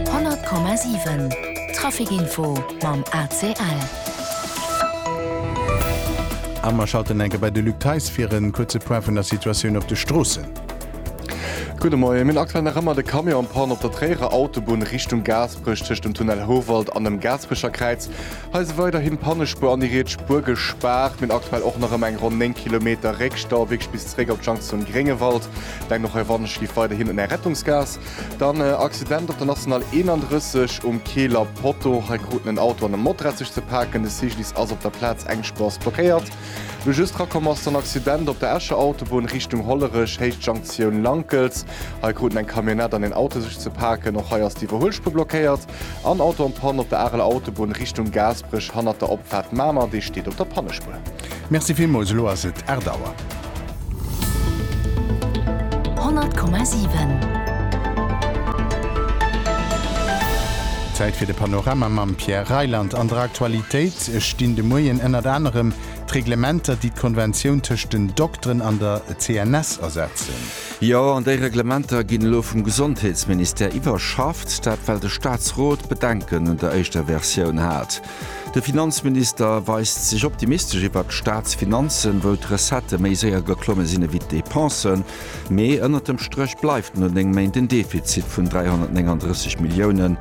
100,7 Trafic Info mam ACL. A mer schalten enke bei de Luc Theis fir e kuerze Point vun der Situatioun op de Stroossen. Gudde Moien. Mir hunn aktuell nach ëmmer de Camion en panne op der Tréierer Autobunn Richtung Gaasperech tëscht dem Tunnel Houwald an dem Gaasperecher Kräiz. Hei si weiderhin d'Pannespuer an déi riets Spuer gespaart. Mir hunn aktuell och nach ëmmer eng ronn 9 Kilometer Réckstau wierklech bis zeréck op d'Jonktioun Gréngewald. Denkt och hei Wanneg giff weiderhin un är Rettungsgas. Dann Accident op der National 31 um Keeler Potto. Hei kruten en Auto an e Motrad sech ze paken. De Cyclist ass op der Plaz eng Spuer ass blockéiert. Wou just rakomm ass dann Accident op der Escher Autobunn Richtung Hollerech Héicht Junktioun Lankels. Hei kruten eng Camionnette an en Auto sech ze paken. Och hei ass d'Iwwerhuelspuer blockéiert. An Auto am Panne op der Areler Autobunn Richtung Gaasperech hannert der Opfaart Mamer. Dee steet op der Pannespuer. Merci villmols, elo ass et 8 Auer. 100,7. Zäit fir de Panorama mam Pierre Reyland. An der Aktualitéit stinn de Moien ënnert anerem d'Reglementer, déi d'Konventioun tëscht den Dokteren an der CNS ersetzen. Jo, an déi Reglementer ginn elo vum Gesondheetsministère iwwerschafft. Dat well de Staatsrot Bedenken un der éischter Versioun hat. De Finanzminister weist sech optimistesch iwwert d'Staatsfinanzen, wou d'Recettë méi séier geklomme sinn ewéi d'Depensen. Mee ënnert dem Stréch bleift no 9 Méint en Defizit vun 339 Milliounen.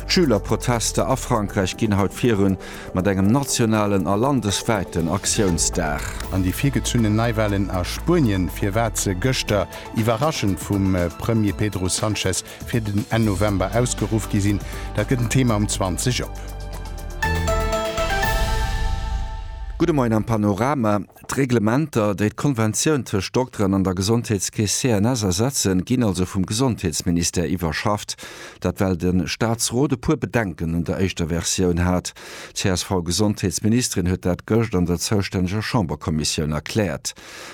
D'Schülerprotester a Frankräich ginn haut virun, mat engem nationalen a landeswäiten Aktiounsdag. An déi virgezunnen Neiwalen a Spuenien, firwat se gëschter iwwerraschend vum Premier Pedro Sanchez fir den Enn November ausgeruff gi sinn. Dat gëtt den Thema um 20 op. Gudde Moien am Panorama. D'Reglementer, déi d'Konventioun tëscht Dokteren an der Gesondheetskeess CNS ersetzen, ginn also vum Gesondheetsministère iwwerschafft. Dat well de Staatsrot e puer Bedenken un der éischter Versioun hat. D'CSV-Gesondheetsministerin huet dat gëscht an der zoustänneger Chamberkommissioun erkläert.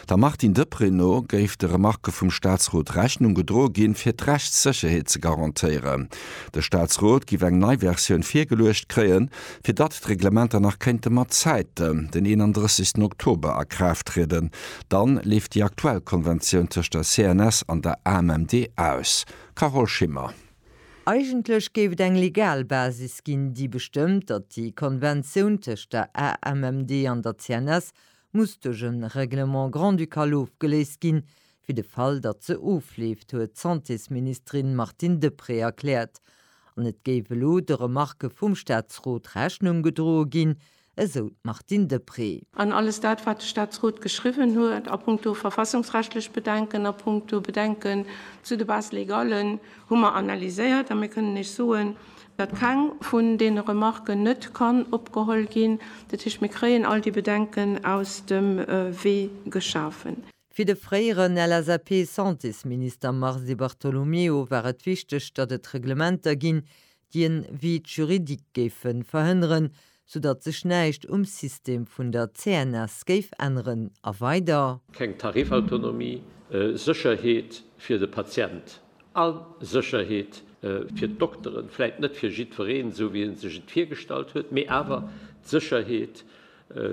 Der Martine Deprez no géif de Remarke vum Staatsrot Rechnung gedroe ginn, fir d'Rechtssécherheet ze garantéieren. De Staatsrot giff eng nei Versioun virgeluecht kréien, fir datt d'Reglementer nach kéinte mat Zäiten den 31 Oktober a Kraaft trieden. Dann leeft déi aktuell Konventioun tëscht der CNS an der AMMD aus. Carole Schimmer. Eigentlech géif et eng legal Basis ginn, déi bestëmmt, datt déi Konventioun tëscht der AMMD an der CNS muss duerch e Règlement grand-ducal ofgeléist ginn, fir de Fall, datt se ofleeft, huet d'Santésministerin Martine Deprez erkläert. An et géif elo de Remarke vum Staatsrot Rechnung gedroe ginn, esou d'Martine Deprez. An alles dat, wat de Staatsrot geschriwwen huet a puncto verfassungsrechtlech Bedenken, a puncto Bedenken zu de Bases-légalen, hu mer analyséiert. A mir kënnen Iech soen, datt keng vun deene Remarken net kann opgeholl ginn, dat heescht, mir kréien all déi Bedenken aus dem Wee geschafen. Fir de fréieren LSAP-Santésminister Mars Di Bartolomeo war et wichteg, datt et Reglementer ginn, déi en Vide juridique géife verhënneren, soudatt sech näischt um System vun der CNS géif änneren, a weider. Keng Tarifautonomie, Sécherheet fir de Patient a Sécherheet fir d'Dokteren, vläit net fir jiddwereen, esou wéi e sech et virgestallt huet, mee awer d'Sécherheet,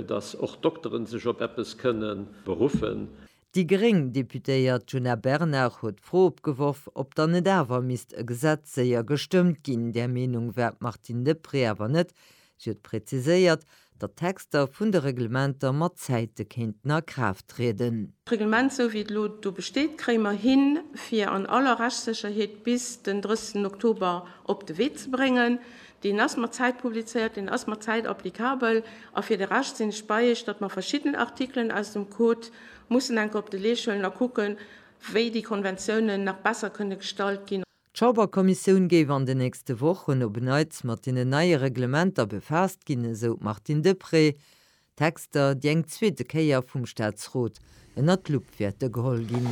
datt och d'Dokteren sech op eppes kënnen beruffen. Déi gréng Deputéiert Djuna Bernard huet d'Fro opgeworf, ob dann net awer misst e Gesetz séier gestëmmt ginn. Där Meenung war d'Martine Deprez awer net. Si huet präziséiert, datt d'Texter vun de Reglementer mat Zäite kéinten a Kraaft trieden. D'Reglement, esou wéi et elo do besteet, kréie mer hin, fir an aller Rechtssécherheet bis den 30 Oktober op de Wee ze bréngen. Deen ass mat Zäit publizéiert, deen ass mat Zäit applicabel. A fir de Rescht sinn ech bei Iech, datt mer verschidden Artikelen aus dem Code mussen enke op de Leescht huelen a kucken, wéi déi Konventiounen nach besser kënne gestalt ginn. D'Chamberkommissioun géif an den nächste Wochen op en Neits mat deenen neie Reglementer befaasst ginn, esou d'Martine Deprez. D'Texter, déi eng zweete Kéier vum Staatsrot ënnert d'Lupp wäerte geholl ginn.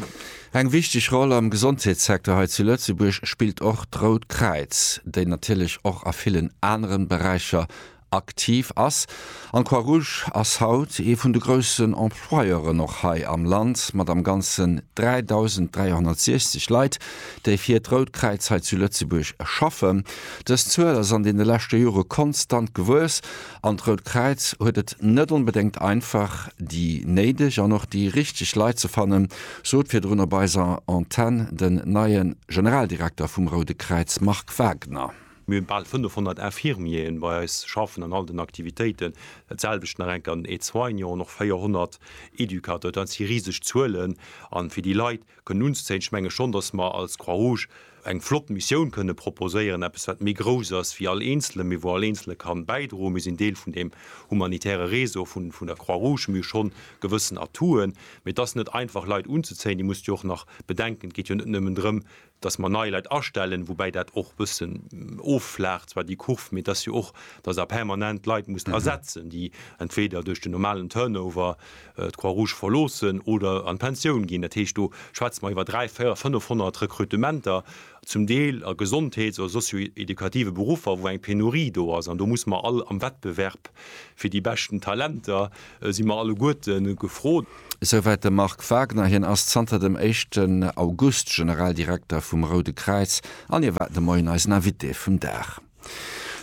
Eng wichteg Roll am Gesondheetssecteur hei zu Lëtzebuerg spillt och d'Rout Kräiz, déi natierlech och a villen aneren Beräicher aktiv ass. An d'Croix-Rouge ass haut ee vun de groussen Employeuren och hei am Land, mat am Ganzen 3.360 Leit, déi fir d'Rout Kräiz hei zu Lëtzebuerg schaffen. Dës Zuel ass an deene leschte Jore konstant gewuess An d'Rout Kräiz huet et net onbedéngt einfach, déi néideg an och déi richteg Leit ze fannen, sot virdrun op eiser Antenn den neie Generaldirekter vum Roude Kräiz Marc Wagner. Mir hunn bal 500 Infirmieren bei eis schaffen an all den Aktivitéiten. Dat selwecht nach eng Kéier an den Aide-soignanten, och 400 Educateurs. Dat si riseg Zuelen. A fir déi Leit, D'Kanunszéint, ech menge schonn, datt mer als Croix Rouge eng flott Missioun kënne proposéieren, eppes wat méi grouss ass wéi all Eenzele, mee wou all Eenzele ka bäidroen. Mir sinn Deel vun deem humanitäre Réseau vun der Croix Rouge, mir hu scho gewëssen Atouten, mee et ass net einfach Leit unzezéien. Dir musst jo och nach bedenken, et geet jo net nëmmen drëm, datt mer nei Leit astellen, woubäi dat och e bëssen offlaacht zwar déi Kurv, mee et ass jo och, datt Der permanent Leit musst ersetzen, déi entweder duerch den normalen Turnover d'Croix Rouge verloossen oder an d'Pensioun ginn. Dat heescht, do schwätze mer iwwer 3, 4, 500 Rekrutementer, zum Deel a gesondheets oder socio-educative Beruffer, wou eng Penurie do ass. An do muss mer all am Wettbewerb fir déi beschten Talenter si mer alleguerte gefrot. Esouwäit de Marc Wagner. Hien ass zanter dem éischten August Generaldirekter vum Roude Kräiz an hie war de Moien eisen Invité vum Dag.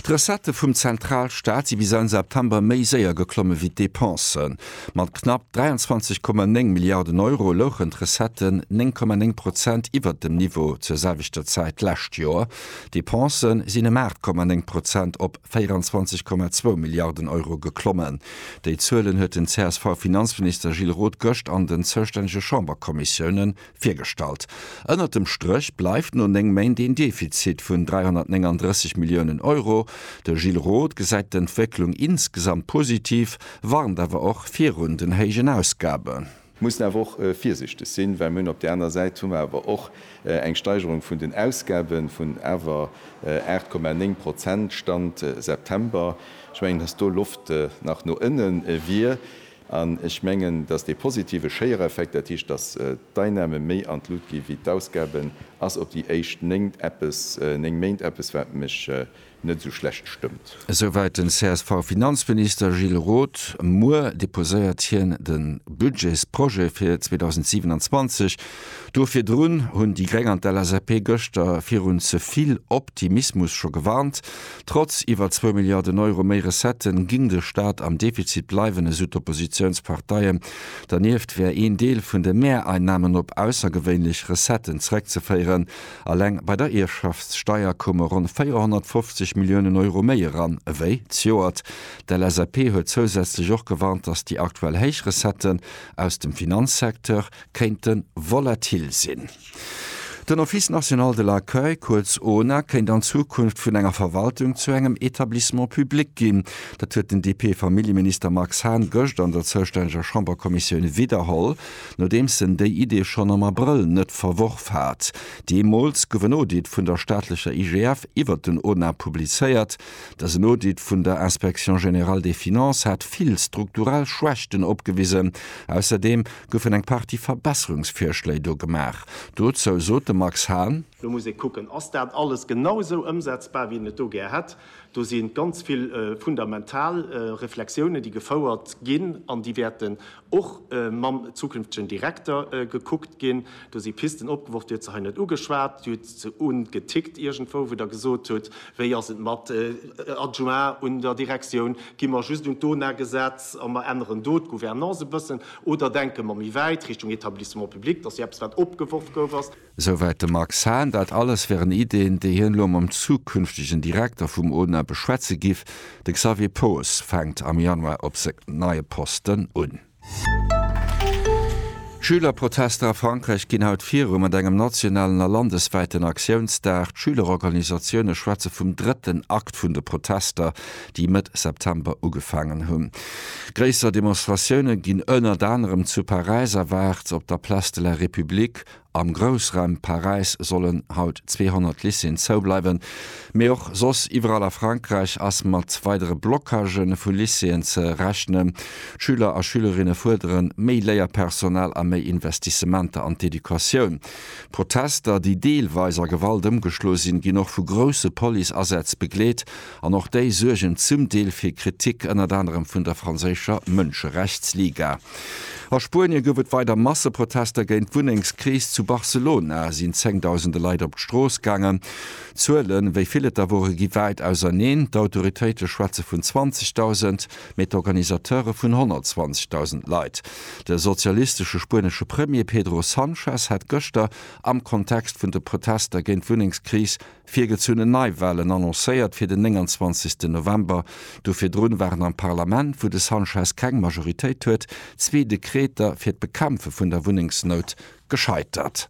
D'Recettë vum Zentralstaat si bis Enn September méi séier geklomme wéi d'Depensen. Mat knapp 23,9 Milliarden Euro louchen d'Recetten 9,9 Prozent iwwert dem Niveau zur selwechter Zäit d'lescht Joer. D'Depense sinn ëm 8,9 Prozent op 24,2 Milliarden Euro geklommen. Déi Zuelen huet den CSV-Finanzminister Gilles Roth gëscht an den zoustännege Chamberkommissiounen Virgestallt. Ënnert dem Stréch bleift no 9 Méint een Defizit vun 339 Milliounen Euro. De Gilles Roth gesäit d'Entwécklung insgesamt positiv, warnt awer och virun den héijen Ausgaben. Mir mussen awer och virsichteg sinn, well mir hunn op där aner Säit hu mir awer och eng Steigerung vun den Ausgabe vun awer 8,9 Prozent, Stand September. Ech mengen, dass do Loft nach no ënne wier. An ech mengen, dass dee positive Schéiereffekt, dat heescht, dass d'Einnahme méi an d'Lut gi wéi d'Ausgaben, ass op déi éischt néng eppes, néng Méint eppes, wat mech net esou schlecht stëmmt. Esouwäit den CSV-Finanzminister Gilles Roth. Muer deposéiert hien de Budgetsprojet fir 2027. Do virdrun hunn déi gréng an d'LSAP gëschter virun ze vill Optimismus scho gewarnt. Trotz iwwer zwou Milliarden Euro méi Recettë ging de Staat am Defizit bleiwen, esou d'Oppositiounsparteien. Dernieft wär een Deel vun de Mehreinnahmen op aussergewéinlech Recetten zeréckzeféieren. Alleng bei der Ierschaftssteier koume ronn 450 Milliounen Euro méi eran ewéi zejoert. D'LSAP huet zousätzlech och gewarnt, datt déi aktuell héich Recetten aus dem Finanzsecteur kéinte volatil sinn. Den Office national de l'accueil, kuerz ONA, kéint an Zukunft vun enger Verwaltung zu engem Etablissement public ginn. Dat huet den DP-Familljeminister Max Hahn gëscht an der zoustänneger Chamberkommissioun widderholl, nodeems en déi Idee schonn am Abrëll net verworf hat. Deemools gouf en Audit vun der staatlecher IGF iwwer den ONA publizéiert. Dësen Audit vun der Inspection générale des finances hat vill strukturell Schwächten opgewisen. Ausserdeem. goufen eng Partie Verbesserungsvirschléi do gemaach. Dozou sot de Max Hahn. Lo muss ee kucken, Ass dat alles genau esou ëmsetzbar, wéi een et do gär hätt? Do si ganz vill fundamental Reflexiounen, déi gefouert ginn an déi wäerten och mam zukünftegen Direkter gekuckt ginn. Do si Pisten opgeworf, Dir hutt se hei net ugeschwat, Dir hutt se ungetickt iergendwou, wou Der gesot hutt, Wéi ass et mat Adjoint un der Direktioun? Gi mer just un d'ONA-Gesetz a mer änneren do d'Gouvernance e bëssen? Oder denke mer méi wäit, Richtung Etablissement public, dass jo eppes wat opgeworf gouf ass. Souwäit de Max Hahn. Dat alles wären Ideen, déi hien elo mam zukünftegen Direkter vum ONA beschwätze giff. De Xavier Poos fänkt am Januar op seng neie Posten un. D'Schülerprotester a Frankräich ginn haut viru mat engem nationalen a landeswäiten Aktiounsdag. D'Schülerorganisatioune schwätze vum drëtten Akt vun de Protester, déi Mëtt September ugefaangen hunn. Gréisser Demonstratioune ginn ënnert anerem zu Paräis erwaart. Op der Place de la République am Groussraum Paräis sollen haut 200 Lycéeën zoubleiwen. Mee och soss iwwerall a Frankräich ass mat weidere Blockagë vu Lycéeën ze rechnen. D'Schüler a Schülerinne fuerderen méi Léierpersonal a méi Investissementer an d'Educatioun. D'Protester, déi deelweis a Gewalt ëmgeschloe sinn, ginn och vu grousse Police-Asätz begleet. An och déi suergen zum Deel fir Kritik, ënnert anerem vun der franséischer Mënscherechtsliga. A Spuenie gouf et weider Masseprotester géint d'Wunnengskris. Zu Barcelona sinn zéngdausende Leit op d'Strooss gaangen. D'Zuelen, wéi vill et der wore gi wäit auserneen. D'Autoritéite schwätze vun 20.000, mee d'Organisateure vun 120.000 Leit. De sozialistesche spuenesche Premier Pedro Sanchez hat gëschter am Kontext vun de Protester géint d'Wunnengskris virgezunnen Neiwahlen annoncéiert fir den 29 November. Do virdrun waren am Parlament, wou de Sanchez keng Majoritéit huet, zwee Dekreter fir d'Bekämpfe vun der Wunnengsnout gescheitert.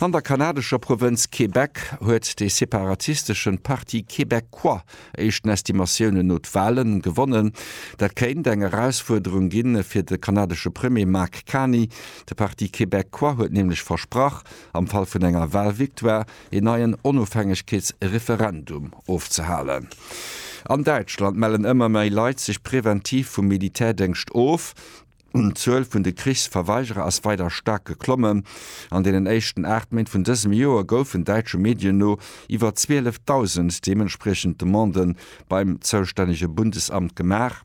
An der kanadescher Provënz Québec huet dee separatisteschen Parti Québecquoi éischten Estimatiounen no d'Wahlen gewonnen. Dat kéint eng Erausfuerderung ginn fir de kanadesche Premier Mark Carney. De Parti Québecquoi huet nämlech versprach, am Fall vun enger Wahlvictoire, een neien Onofhängegkeetsreferendum ofzehalen. An Däitschland mellen ëmmer méi Leit sech preventiv vum Militärdéngscht of. D'Zuel vun de Krichsverweigerer ass weider staark geklommen. An deenen éischten 8 Méint vun dësem Joer goufen, däitsche Medien no, iwwer 12.000 deementspriechend Demanden beim zoustännege Bundesamt gemaach.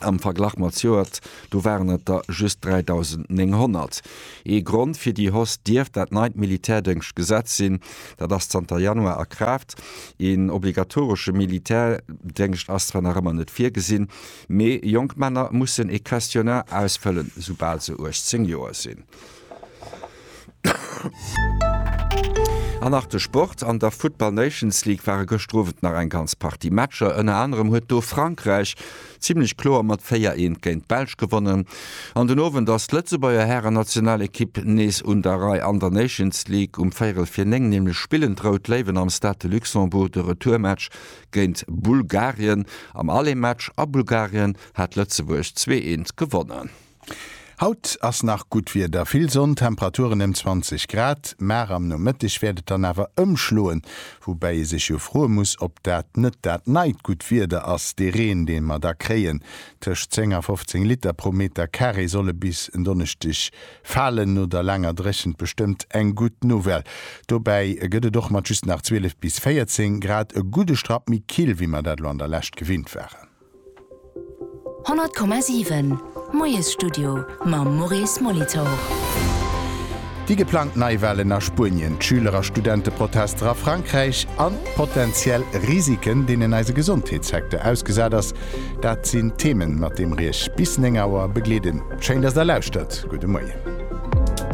Am Verglach mat Joert do waren et der just 3.900. Ee Grond fir déi Hausse dierft dat neit Militärdëngschtgesetz sinn. Dat ass zanter Januar a Kraaft. Een obligatoresche Militärdëngscht ass zwar nach ëmmer net virgesinn, mee jonk Männer mussen ee Questionnaire ausfëllen, soubal se 18 Joer sinn. An nach de Sport, An der Futtball Nations League ware gëschter Owend nach eng ganz Partie Matcher. Ënner anerem huet do Frankräich zimmlech kloer mat 4-1 géint d'Belsch gewonnen. An den Owend ass d'Lëtzebuerger Hären-Nationalekipp nees un der Rei an der Nations League. Um véierel fir néng nämlech spillen d'Rout Léiwen am Stade de Luxembourg de Retourmatch géint Bulgarien. Am Allez-Match a Bulgarien hat Lëtzebuerg 2-1 gewonnen. Haut ass nach gutt Wieder, vill Sonn, Temperaturen ëm 20 Grad, mar am Nomëtteg wäert et dann awer ëmschloen, woubäi ee sech jo froe muss, ob dat net dat neit gutt Wieder ass. Dee Reen, dee mer da kréien, tëscht 10 a 15 Liter pro Meter Carré, soll e bis en Donneschdeg falen. No der laanger Dréchent bestëmmt eng gutt Nouvelle. Dobäi gëtt et och mat just nach 12 bis 14 Grad e gudde Strapp méi kill, wéi mer dat elo an der Lescht gewinnt waren. 100,7, Moiesstudio mam Maurice Molitor. Déi geplangt Neiwalen a Spuenien, d'Schüler a Studenteprotester a Frankräich an d'potenziell Risiken, deenen eise Gesondheetssecteur ausgesat ass, dat sinn d'Themen, mat deem mir Iech bis 9 Auer begleeden. Schéin, dass Der lauschtert. Gudde Moien.